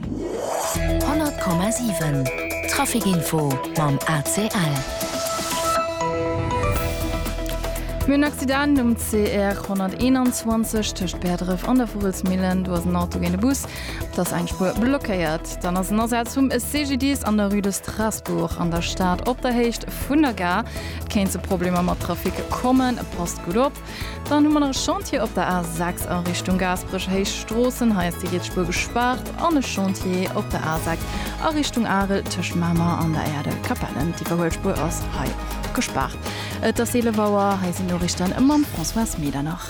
100,7 Traficinfo mam ACL. Mir hunn en Accident um CR 121 tëscht Bäerdref an der Vugelsmillen. Do ass en Auto géint e Bus, et ass eng Spuer blockéiert. Dann ass en Asaz vum CGDIS an der Rue de Strasbourg an der Stad op der Héicht vun der Gare. Et kéint zu Problemer mat Trafic kommen, passt gutt op. Dann hu mer nach e Chantier op der A6 a Richtung Gaasperech, Héich Stroossen. Hei ass déi riets Spuer gespaart. An e Chantier op der A6 a Richtung Arel tëscht Mamer an der Erdel Capellen. D'Iwwerhuel Spuer ass hei och gespaart. Et ass 11 Auer. Hei sinn d'Noriichten mam Françoise Medernach.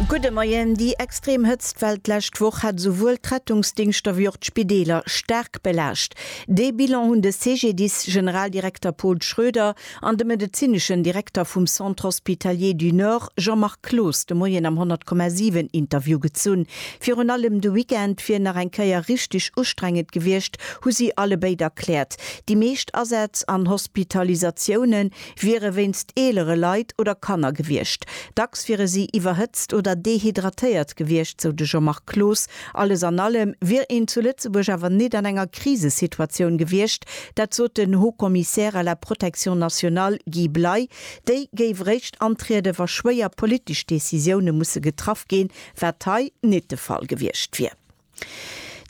Gudde Moien. Déi extrem Hëtztwell d'lescht Woch hat esouwuel d'Rettungsdingschter wéi och d'Spideeler staark belaascht. Dee Bilan hunn de CGDIS-Generaldirekter Paul Schroeder An de medezineschen Direkter vum Centre Hospitalier du Nord Jean-Marc Cloos de Moien am 100,7 Interview gezunn. Virun allem de Weekend wier nach eng Kéier richteg ustrengend gewiescht, hu si allebéid erkläert. Déi meescht Asätz an Hospitalisatioune wiere wéinst eelere Leit oder Kanner gewiescht. Dacks wiere si iwwerhëtzt oder dehydratéiert gewiescht, sou de Jean-Marc Cloos Alles an allem wier een zu Lëtzebuerg awer nit an enger Krisesituatioun gewiescht, dat sot den Haut-Commissaire à la protection nationale Guy Bley. Déi géif eréischt antrieden, wa schwéier politesch Decisioune musse getraff ginn, wat hei nit de Fall gewiescht wier.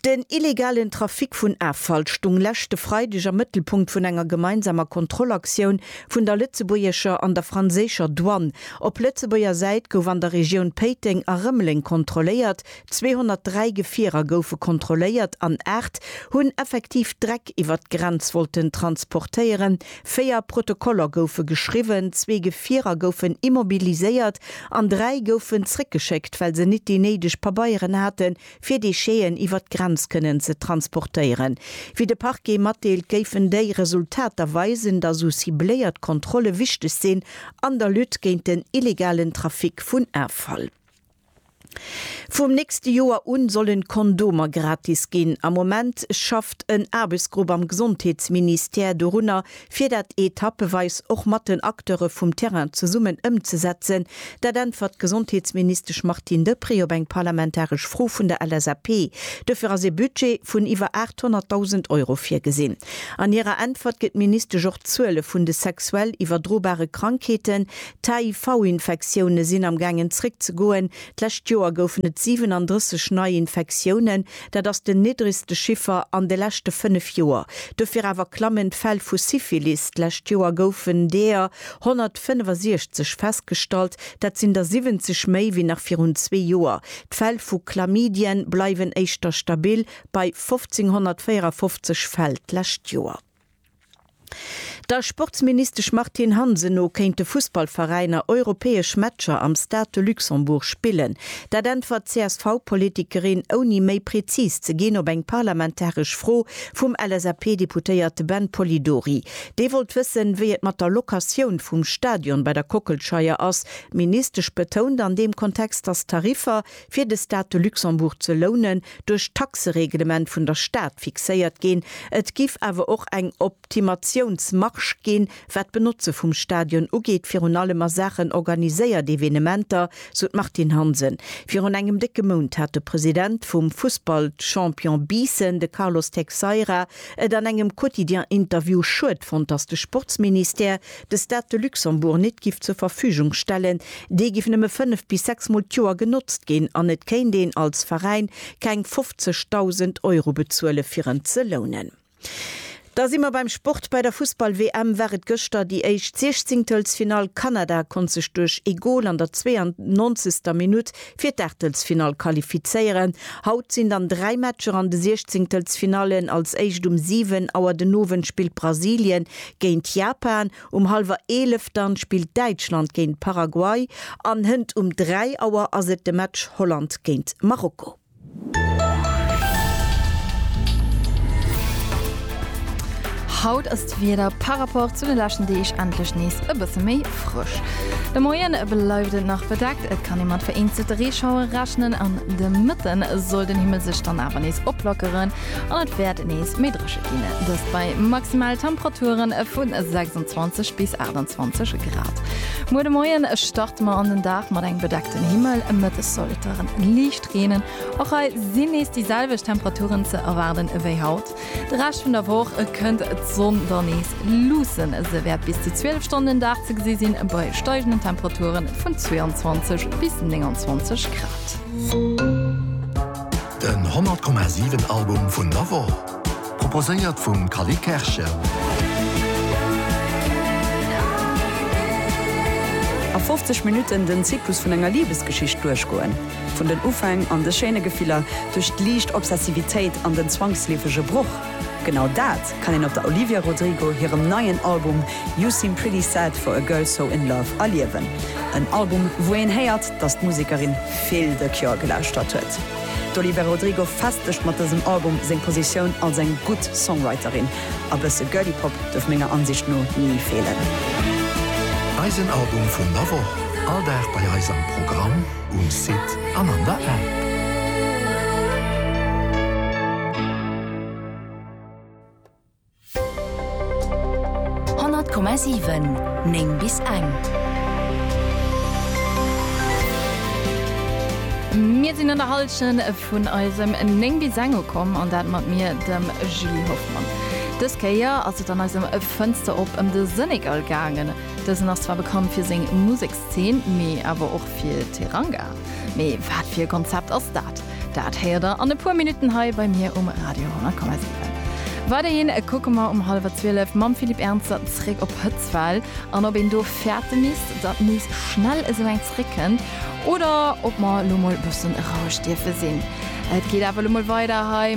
Den illegalen Trafic vun Affall stung leschte Freideg am Mëttelpunkt vun enger gemeinsamer Kontrollaktioun vun der lëtzebuergescher an der franséischer Douane. Op Lëtzebuerger Säit gouf an der Regioun Péiteng a Rëmeleng kontrolléiert, 203 Gefierer goufe kontrolléiert an 8 hunn effektiv Dreck iwwer d'Grenz wollten transportéieren. Véier Protokoller goufe geschriwwen, zwee Gefierer goufen immobiliséiert an dräi goufen zréckgeschéckt, well se nit déi néideg Pabeieren hate fir Décheten iwwer d'Grenz kënnen ze transportéieren. Wéi de Parquet matdeelt, géifen déi Resultater weisen, datt esou cibléiert Kontrolle wichteg sinn an der Lutte géint den illegalen Trafic vun Affall. Vum nächste Joer un solle Kondomer gratis ginn. Am Moment schafft en Aarbechtsgrupp am Gesondheetsministère dorunner, fir dat etappeweis och mat den Acteure vum Terrain zesummen ëmzesetzen. Dat äntwert d'Gesondheetsministesch Martine Deprez op eng parlamentaresch Fro vun der LSAP. Dofir ass ee Budget vun iwwer 800.000 Euro virgesinn. An hirer Äntwert gëtt d'Ministesch och d'Zuele vun de sexuell iwwerdrobare Krankheeten, D'HIV-Infektioune sinn am gaangen zréckzegoen, d'lescht Joer goufen et 37 nei Infektiounen, dat ass den niddregste Chiffer an de leschte 5 Joer. Dofir awer klammen d'Fäll vu Syphilis, d'lescht Joer goufen deer 165 festgestallt, dat sinn der 70 méi wéi nach virun zwee Joer. D'Fäll vu Chlamydien bleiwen éischter stabil bei 1.554 Fäll d'lescht Joer. Der Sportsministesch Martine Hansen no kéinte Fussballveräiner europäesch Matcher am Stade de Luxembourg spillen. Dat äntwert d'CSV-Politikerin, ouni méi prezis ze ginn, op eng parlamentaresch Fro vum LSAP-Deputéierte Ben Polidori. Dee wollt wëssen, wéi et mat der Locatioun vum Stadion bei der Kockelscheier ass. D'Ministesch betount an deem Kontext, datt d'Tariffer, fir de Stade de Luxembourg ze lounen, duerch d'Taxereglement vun der Stad fixéiert ginn. Et giff awer och eng Optimatiounsmarge ginn, wat d'Benotze vum Stadion ugeet, virun allem a Saachen organiséiert Evenementer, sou d'Martine Hansen. Virun engem décke Mount hat de President vum Fussballchampion Biissen, de Carlos Teixeira, et an engem Quotidien-Interview schued fonnt, datt de Sportsministère de Stade de Luxembourg nit giff zur Verfügung stellen, dee giff nëmme fënnef bis sechs Mol d'Joer genotzt ginn an et kéint een als Veräin keng 50.000 Euro bezuele fir en ze lounen. Da si mer beim Sport, Bei der Fussball-WM war et gëschter déi éischt Siechzéngtelsfinall. Kanada konnt sech duerch ee Gol an der 92. Minutt fir d'Aachtelsfinall qualifizéieren. Haut sinn dann dräi Matcher an de Siechzéngtelsfinallen. Als éischt um 7 Auer den Owend spillt Brasilien géint Japan, um hallwer 11 dann spillt Däitschland géint Paraguay an hënt um 3 Auer ass et de Match Holland géint Marokko. Haut ass d'Wieder par rapport zu de leschten Deeg endlech nees e bësse méi frësch. De Moien bleift et nach bedeckt, et kann ee mat vereenzelte Reeschauere rechnen an de Mëtten soll den Himmel sech dann awer nees oplockeren. an et wäert nees méi dréche ginn, dëst bei maximale Temperature vu 26 bis 28 Grad. Muer de Moie starte mer an den Dag mat engem bedeckten Himmel, mëttes soll et da liicht reenen. Och hei sinn nees déi selwecht Temperaturen ze erwaarde wéi haut. De Rescht vun der Woch kënnt d'Sonn da nees luussen, se wäert bis zu 12 Stonnen den Dag ze gesi sinn, bei steigenden Temperature vun 22 bis 29 Grad. Den 100,7 Album vun der Woch, proposéiert vum Cally Kerschen. A 50 Minutten den Zyklus vun enger Libesgeschicht duerchgoen, vun den Ufäng an de schéine Gefiller, duerch d'liicht Obsessivitéit an den zwangsleefege Broch, genau dat, kann een op der Olivia Rodrigo hirem neien Album You Seem Pretty Sad For A Girl So In Love erliewen. En Album, wou een héiert, dass d'Musekerin vill The Cure gelauschtert huet. D'Olivia Rodrigo festegt mat dësem Album seng Positioun als eng gutt Songwriterin. A bësse Girly Pop duerf menger Ansicht no ni feelen. Eisen Album vun der Woch, all Dag bei eis am Programm, um Site an an der App. 100,7 9 bis eng. Mir sinn an der Hallschent vun eisem 9 bis eng ukomm an dat mat mir, dem Julie Hoffmann. Dës Kéier ass et an eisem Fënster op ëm de Senegal gaangen. Dësen ass zwar bekannt fir seng Musekszeen, mee awer och fir Teranga. Mee wat fir e Konzept ass dat? Dat héiert der an e puer Minutten hei bei mir um Radio 10,7. Weiderhin kucke mer um hallwer 12 mam Philippe Ernzer zréck op Hëtzfäll an ob een do fäerte misst, datt nees schnell esou eng zréckkënnt oder ob mer elo mol e bëssen roueg dierfe sinn. Et geet awer elo mol weider hei.